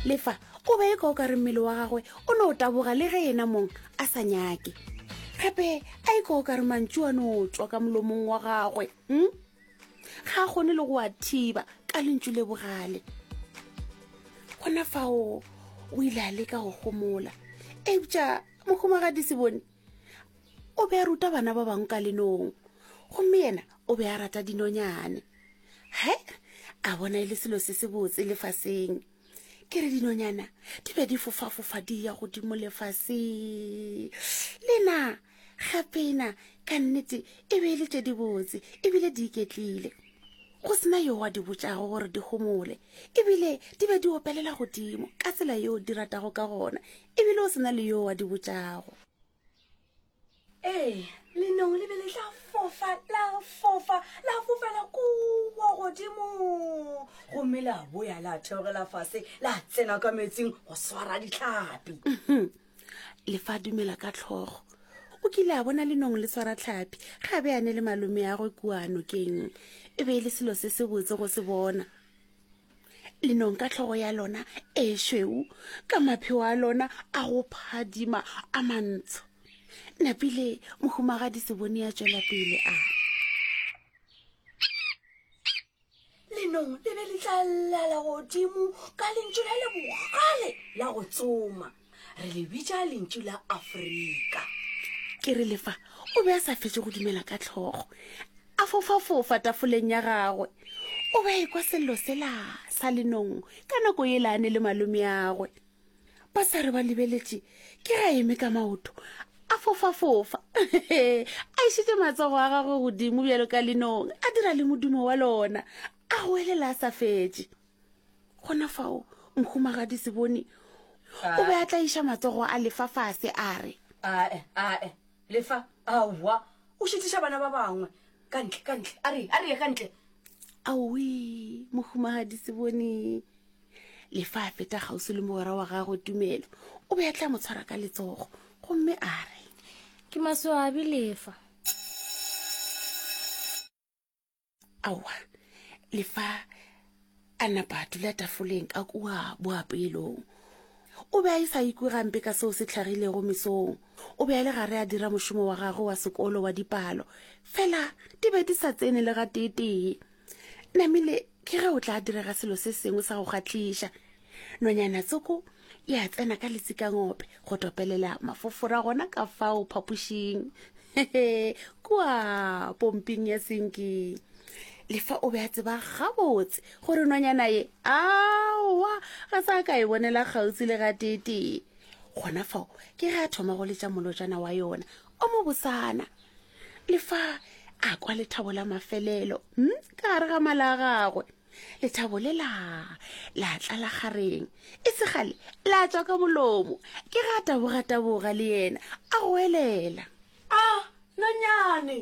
le fa o be e ka o ka re mmele wa gagwe o ne o taboga le ge ena mong a sa nyake gape a e ka o ka re mantšu a ne o tswa ka molomong wa gagwe um ga a kgone le go a thiba ka lentšu le bogale gona fao o ile a leka go gomola eupša mohumagadi se bone o be a ruta bana ba bangwe ka lenong gomme yena o be a rata dinonyane he a bona e le selo se se botse lefaseng ke re dinonyana di be di fofafofa di ya godimo lefaseng lena gapena ka nnete e be e le tše di botse ebile di iketlile go sena yo wa di botšago gore di gomole ebile di be di opelela godimo ka tsela yeo di ratago ka gona ebile o sena le yo wa di botšago Ee, lenong le be le tla fofa, la fofa, la fofela kua godimo. Gomme la boya la theogela fase, la tsena ka metsing go swara ditlhapi. Mhm. Le fa dumela ka tlhogo. O kile a bona lenong le swara tlhapi, ga be a ne le malome ya gwe kua nokeng. E be e le selo se se botse go se bona. lenong ka tlhogo ya lona e šweu ka mapheo a lona a go phadima a mantsho napile mohumagadi se bone ya tšwela pele a lenong le be le tla llala godimo ka lentšu la le bogale la go tsoma re le bitša lentšu la afrika ke re lefa o be a sa fetše go dumela ka tlhogo a fofafofa tafoleng ya gagwe o be a ekwa sello sela sa lenong ka nako e laane le malome agwe ba sa re ba lebeletše ke ga eme ka maoto a fofafofa a išitše matsogo a gagwe godimo bjalo ka lenong a dira le modumo wa lona a goelela a sa fetše gona fao mohumagadi sebone o be a tla iša matsogo a lefa fase a re ae ae lefa aowa o šitiša bana ba bangwe ka ntle ka ntle a re a re ye ka ntle aowe mohumagadi sebone lefa a feta gausi le mogwera wa gagwe tumelo o be a tla mo tshwara ka letsogo gomme a re ke masoabi lefa aowa le fa a napa a dula tafoleng ka kua boapelong o be a e sa ikwe gampe ka seo se tlhagilego mesong o be a le gare a dira mošomo wa gagwe wa sekolo wa dipalo fela di be di sa tsene le ga teetee namile ke ge o tla direga selo se sengwe sa go gatliša nonyana tsoko e a tsena ka letsikangope go topelela mafofora gona ka fao phapošing kua pomping ya senking lefa o be a tseba gabotse gore nonyana ye aowa ga sa ka e bonela kgautsi le ga tetee gona fao ke ge a thoma go letša molojana wa yona o mo bosana le fa a kwa lethabo la mafelelo hmm, ka gare ga mala a gagwe lethabo le la la tlala gareng e segale la tswa ka molomo ke ga tabogataboga le yena a goelela a nonyane